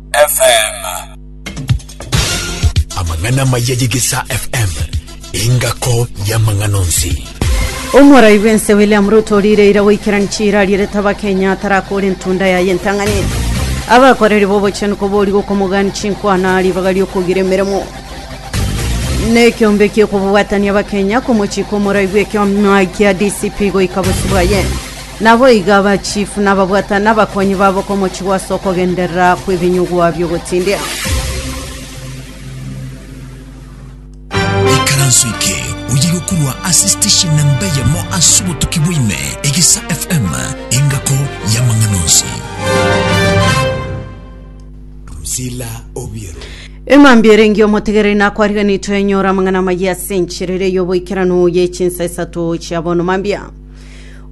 FM. Amang'ana amaya y'Egesaa FM, engako y'amang'ana onsi. Omorai bw'ense William Ruto riire ira goikerani chiira arierete Abakenya atarakore entunda yaye entang'ani. Abakoreri b'obochenu kobori gokomogani chinkwana ribaga riokogira emeremo. Nekiombe kiokobwatania Abakenya komochika omorai bw'ekiama kia DCP goika bosio bwaye. Naboigo abachifu nababwatane abakonyi babo komochigwa ase okogenderera kw'ebinyugwa bi'ogotindia. Ikaranso eke oyerwe korwa ase station na mbe yamo ase obotuki bwaime Egesa FM engako y'amang'ana onsi. Drusilla Obiero. Emambia erengi omotegereri nakwariganitwe enyora amang'ana amayia ase enchera eria y'oboikeranu ye chinsa isato chia bono mambia.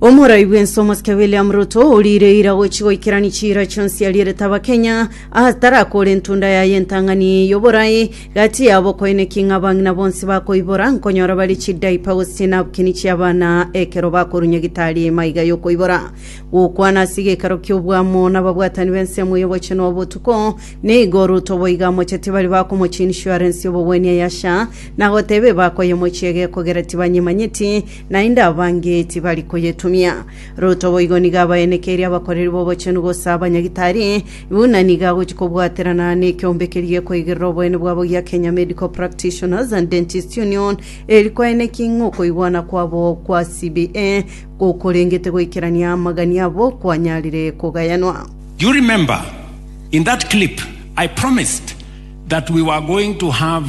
Omorai bw'ense omosike William Ruto oriire eira gochi goikerani chiira chionsi arierete Abakenya atarakore entunda yaye entang'ani y'oborai gati yabo koineki ng'a abang'ina bonsi bakoibora nkonyora bare chidaipa gose chinapkini chi'abana ekero bakorunya gitari maiga y'okoibora gokwana ase gekero ki'obwamo n'ababwatani b'ensemo y'obochenu obotuko nigo Ruto boiga amocheti bari bakomochi insurance y'obogwenia yasha nagotebe bakoyemochia egekogera tibanyemanyeti naende abange tibari koyetumia. Ruto boigo nigo abaenekeirie abakoreri b'obochenu gose abanyagitari, buna nigo agochia kobwaterana nekeombe keria gekoigerera oboene bwabo gia Kenya Medical Practitioners and Dentists Union, eri koenekia ng'a okoigwana kwabo kwa CBA gokorengete goikerania amagani abo kwanyarire kogayanwa. Do you remember in that clip I promised that we were going to have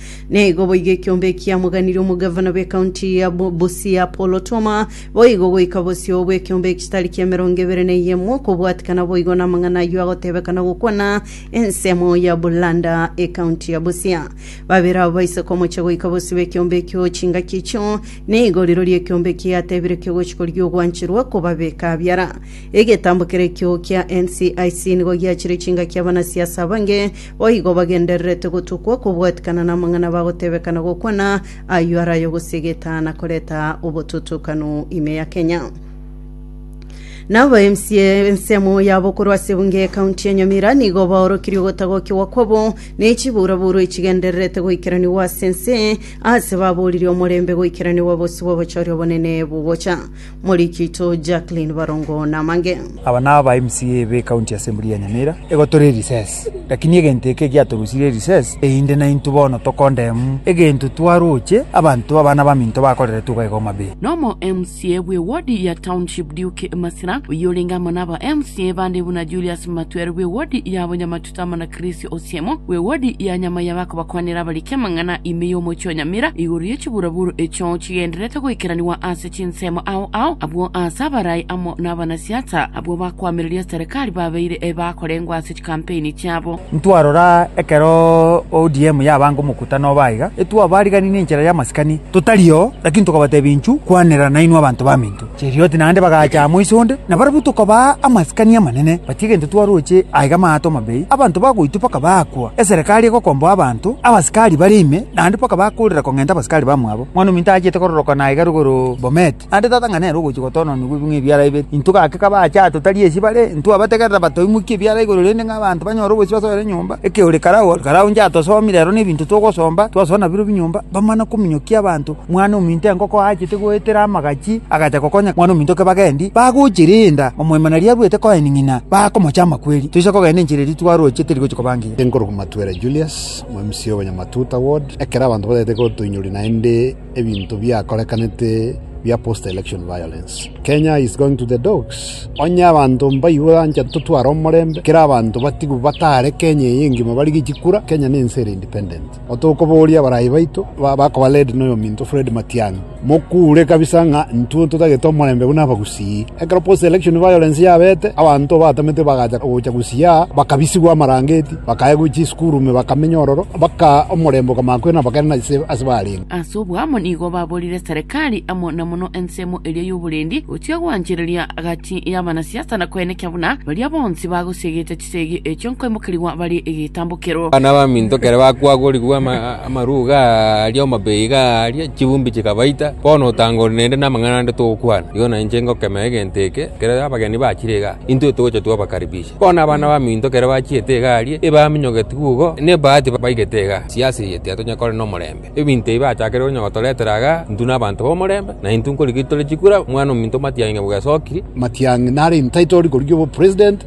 Nigo boigo ekiombe ekiamoganirie omogavana bw'ekaunti ya Bu- Busia Paul Otoma, boigo goika bosio bw'ekiombe ekitari ki'emerongo ebere na eyemo, okobwatikana boigo namang'ana ayio agotebeka na gokwana ensemo ya Bulanda ekaunti ya Busia. Babere abo baise komochia goika bosio bw'ekiombe ekio chingaki echio, nigo rirorio ekiombe kiatebire kegochi korigia ogwancherwa kobabeka biara. Egetambo kere ekio kia NCIC nigo giachire chingaki abanasiasa abange Boigo bagendererete gotokwa kobwatikana namang'ana bagotebekana gokwana ayio are ayogosia egetaa na koreta obototokanu ime ya Kenya. Na aba MCA ensemo yabo korwa ase ebunge ye county ya Nyamira nigo baorokirie ogotagokigwa kwabo ne chiburaburo echigendererete goikeranigwa ase ense ase baboririe omorembe goikeranigwa bosio bw'obochori obonene bogocha. Morikito Jacqueline Barongo namange. Aba naba MCA be County Assembly ya Nyamira egotore recess. Lakini egento eke egiatorusirie erecess eyinde naintwe bono tokondemu egento twaroche abanto abana baminto bakoreretwe iga iga Homabay. Na omo MCA bwe ward ya Township Duke Masira, oyio orenge amo naba MCA bande buna Julius Matwero bwe ward ya Bonyamatuba, Tama na Krisio Osiemo, bw'ewodi ya nyama y'abakobakwanera abariki amang'ana ime y'omochie o Nyamira, igoro ye chiburaburu echio chigendererete goikeranigwa ase chinsemo ao ao, abwo aase abarai amo nabanasiasa abwo bakoamereria serikali babeire bakorengwa ase chikampeini chiabo. Ntwarora ekero ODM yabanga omokutano obo aiga, etwabariganiri nenchera y'amasikani totari oo, lakini tokabatebia inchu kwanera nainwe abanto ba Minto. Cherioti naende bagacha amo iso onde, na barabwo tokabaa amasikani amanene, batie gento twaroche aiga amaato amabei, abanto bagoitwa mpaka baakwa, eserekari egokomboa abanto, abasikari bare ime, naende mpaka bakoorera kong'enta abasikari bamwabo. Mwan'ominto aachete kororokana aiga rogoro Bomet, naende tata ng'a nere ogochia gotoononigwa bing'we ebiara bibere. Intwe gaki kabaache aa totari esi bare, intwabategerera batoimokia ebiara igoro rende ng'a abanto banyore obosio ase ore nyomba, eke ore karao, karao inche atosomire ero nebinto twogosomba, twasoa nabirobio nyomba, bamana kominyokia abanto, Mwana-ominto enkoko aachete goetera amagachi, agacha gokonya mwana-ominto kebaga endi, bagochia riinda, omoimana riabuete koeni ng'ina, baakomocha amakweri. Toisa kogenda enchera eria twaroochete teri gochia koba ngiya. Inkorokwa Matwera Julius, omomc Obonyamatuta Ward. Ekero abanto batagete gotoinyoria naende ebinto biakorekanete bia post election violence. Kenya is going to the dogs. Onye abanto mbaigwe ancha totware omorembe, kera abanto batigwe batare Kenya eye engima barigie chikura, Kenya nense ere independent. otokobooria abarai baito bakoba led noyominto Fred Matiang'i, mokure kabisa ng'a intwe ntotagete omorembe buna abagusii. Ekero post election violence yabete abanto batamete bagacha gocha gusii aa bakabisigwa amarangeti bakaegwa chisukuru ime bakamenya ororo mpaka omorembe okamanya koirana bakarenda ase barenge. Ase oboamo nigo baborire Serikali amo na mono ensemo eria y'oborendi gochia gwanchereria gati y'abanasiasa na koenekia buna baria bonsi bagosiegete Chisegi echio nkoimokerigwa barie egetambokero. Abana abaminto ekero bakwagorigwe ama- amaruga aria amabee iga aria, chibumbi chikabaita, bono otanga ore nende namang'ana ande togokwana. Igo na inche ngokemea egento eke, ekero abageni bachire iga, intwe togocha twabakaribisha. Bono abana abaminto ekero bachiete iga aria, ebaminyogetiwe igo, nebahati baigete iga, siasa eye tiatonyare kore nomorembe. Ebinto ebi bachakire konya gotoretera iga, intwe nabanto b'omorembe, na intwe nkorigeri tore chikura, omwana ominto Matiang'i nabo gesokiri, Matiang'i nare entitled korigia obo president.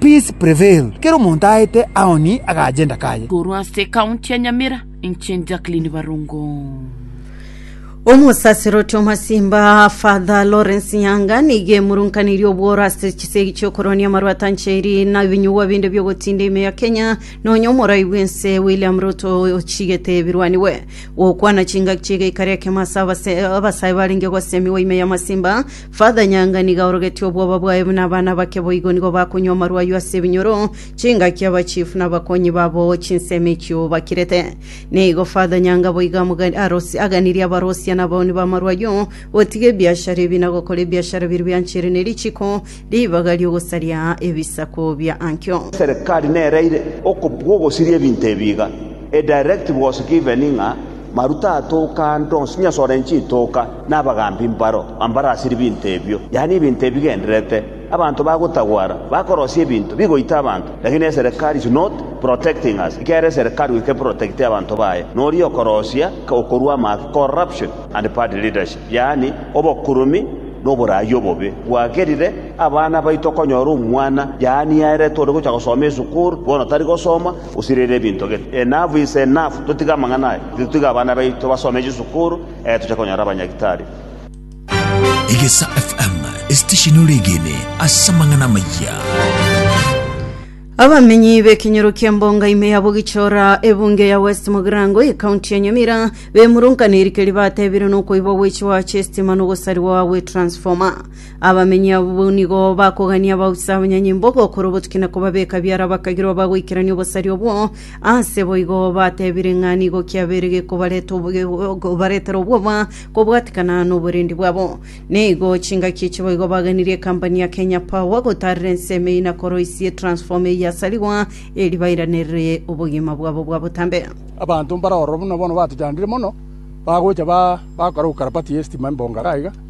Peace prevail. Kera omonto aete Aoni agacha Ndakaye. Korwa ase ekaunti ya Nyamira, inche Jacqueline Barongo. Omosaserdoti omosimba Father Lawrence Nyanga nigo emurunkaneirie obworo ase chisegi chi'okoronia amarwata ncheri na ebinyugwa binde bi'ogotinda ime ya Kenya nonya omorai bw'ense William Ruto ochigete birwaniwe gokwana chingaki chi'egeika ri'ekemo ase abasae barenge gosemigwa ime y'amasimba Father Nyanga nigo aorogetie obwoba bwaye buna abana bake boigo nigo bakonywa amarwa ayio ase ebinyoro, chingaki aba chief na abakonyi babo chinsemo echio bakirete. Nigo Father Nyanga boigo amoga- arosi- aganirie abarosia na abaoni b'amarwa ayio gotiga ebiashara ebi na gokora ebiashara biria bianchire ne richiko ribaga ri'ogosaria ebisaku bia ankio. Serikali nereire okobua ogosiria ebinto ebi iga, a directive was given ng'a Maruta atoka ande onsi, onye asore chitoka, na abagaambi mbaro ambare ase ebinto ebio, yaani ebinto ebigendererete. Abanto bagotagwara, bakorosia ebinto, bigoita abanto. Lakini eserekari is not protecting us, ekiagera eserekari goika eprotecte abanto baye, noria okorosia okorua amaato, corruption and bad leadership, yaani obokuruumi na oboraai obobe. Bwagerire, abana baito okonyora omwana, yaani aerete ore gocha gosoma esukuru, bono tari gosoma, Gose rere ebinto gete. Enough is enough, totige amang'ana aya, titotige abana baito basome chisukuru, ee tochake konyora abanyagitari. Egesa FM, esitesheni ore egene ase amang'ana amayia. Abamenyi b'ekenyoro kia Mbonga ime ya Bogichora ebunge ya West Mogirango ekaunti ya Nyamira bemurunkaniri keri batebire nokoibwa gwechiwa chiestima nogosariwa gwe transformer Abamenyi abwo nigo bakogania abausi abanyanyimbo ogokora obotuki na kobabeka biara bakagirwa bagoikerania obosari obwo, ase boigo batebire ng'a nigo kiabeire gekobareta baretera obwoba kobwatikana noborendi bwabo. Nigo chingaki echi boigo baganirie ekampani ya Kenya Power gotaarera ensemo eyio na koroisia etransformer eyio yasarigwa eri bairanerie obogima bwabo bwa botambe. Abanto mbare ororo buna bono batochandire mono, bagocha ba, bagokora gokarabati y'estima embongare aiga,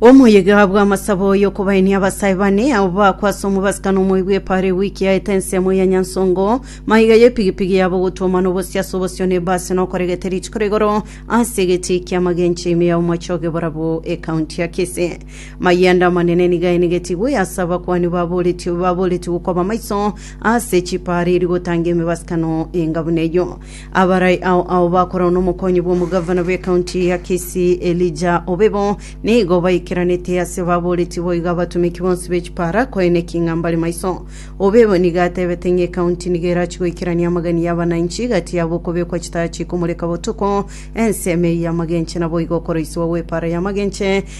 Omoyega bw'amasabo y'okobaenia abasae bane abo bagakwa ase omobasikano omoibi epara ewiki yaete ensemo ya Nyansongo, maiga y'epigipigi yabo ogotwoma na obosie ase obosio na ebasi na okoregete rituko rigoro ase egetii ki'amagencho ime ya omochoge borabwo ekaunti ya Kisii. Mayanda amanene nigo aenegetigwe ase abakuani baboretigwe baboretigwe koba maiso ase chipara erio gotanga emebasikano enga buna eyio. Abarai ao ao bakorana n'omokonyi bw'omogavana bw'ekaunti ya Kisii Elijah Obebo nigo baikeranete ase baboretie boigo abatomeki bonsi be chipara koe ne king'a mbare maiso. Obebo nigo atebete ng'a ekaunti nigo erachi goikerania amagani y'abananchi gati yabo okobekwa chitaya chikomoreka botuko, ensemo eyio y'amagenche naboigo okoroisiwa gw'epara y'amagenche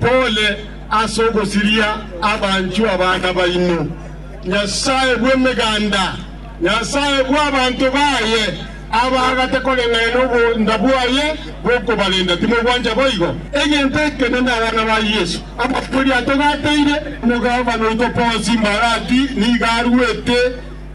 pole ase ogosiria abanchwa baana baino, Nyasae bw'emeganda, Nyasae bw'abanto baye, abaagate koreng'ana n'obonda bwaye bw'okobarenda. Timogwancha boigo? Egento ekenene abana ba Yeso abakweri atogateire, Omogabana oito Ponsi Mbalati nigo aruete.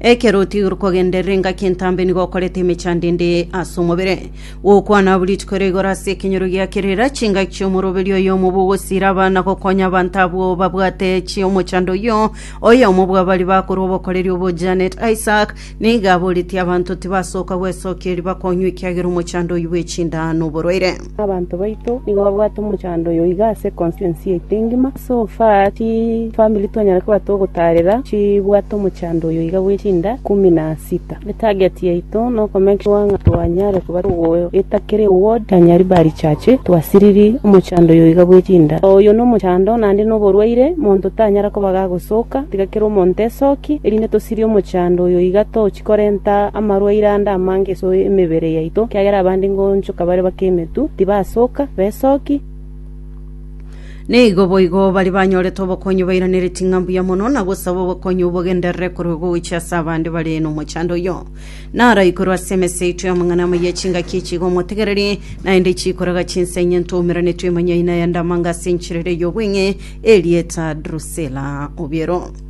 Ekero otiirwe kogenderera engaki entambe nigo okoreta emechando ende ase omobere. Gokwana abwo rituko erio igoro ase ekenyoro gia kerera, chingaki chi'omoroberi oyomo bogosiira abana gokonya abanto abwo babwate chi'omochando oyio. Oyomo bw'abaria bakorwa obokoreri obo Janet Isaac, nigo aboretie abanto tibasoka gwesokia eriba konywa ekiagera omochando oyio bw'echinda n'oborwaire. Abanto baito nigo babwate omochando oyo iga ase constituency yaito engima, so far chi family twanyare koba togotaarera chibwate omochando oyo iga bwe chinda ikumu na sita. Etarget yaito no ko make sure ng'a twanyare koba togoeta kera eward ya Nyaribari church twasiriri omochando oyo iga bwe chinda. Oyo no omochando naende no oborwaire monto tanyara koba gagosoka, tiga kera omonto esoki, erinde tosirie omochando oyo iga toche. Korenta amarwaire ande amange ase emebere yaito, ekiagera abande ngonchoka bare bake emetwe, tibasoka, besoki. Nigo boigo baria banyorete obokonyi bairaneretie ng'a mbuya mono na gosaba obokonyi obogenderere korwa gocha ase abande bare nomochando oyio. Naro aikorwe ase emesa yaito y'amang'ana amaya echingaki echi iga omotegereri, naende chikoraga chinsa inye ntoumeranetwe emonyai na eyandamanga ase enchera eria ey'obweng'e, erieta Drusila. Obiero.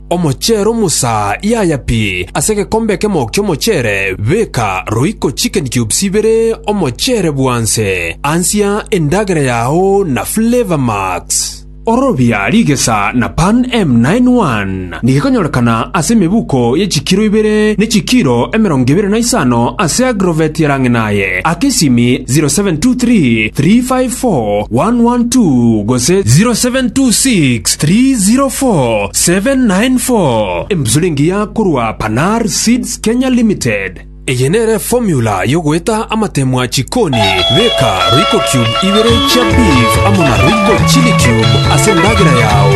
Omocheere omosa yaya pi ase egekombe ekemo ki'omocheere, beka roiko chicken cubes ibere omocheere bwanse, ansia endagera yao na Flavour Max. Ororobia rigesa na Pan M91 nigekonyorekana ase emebuko ye chikiro ibere ne chikiro emerongo ebere na isano ase Agrovet ya Rang'inaye, aka esimi 0723 354 112 gose 0726 304 794 emsilingi ya korwa Panar Seeds Kenya Limited. Eye nere formula yogoeta amatemwa chikoni, beka Royco cube ibere chia beef amo na Royco chili cube ase endagera yao.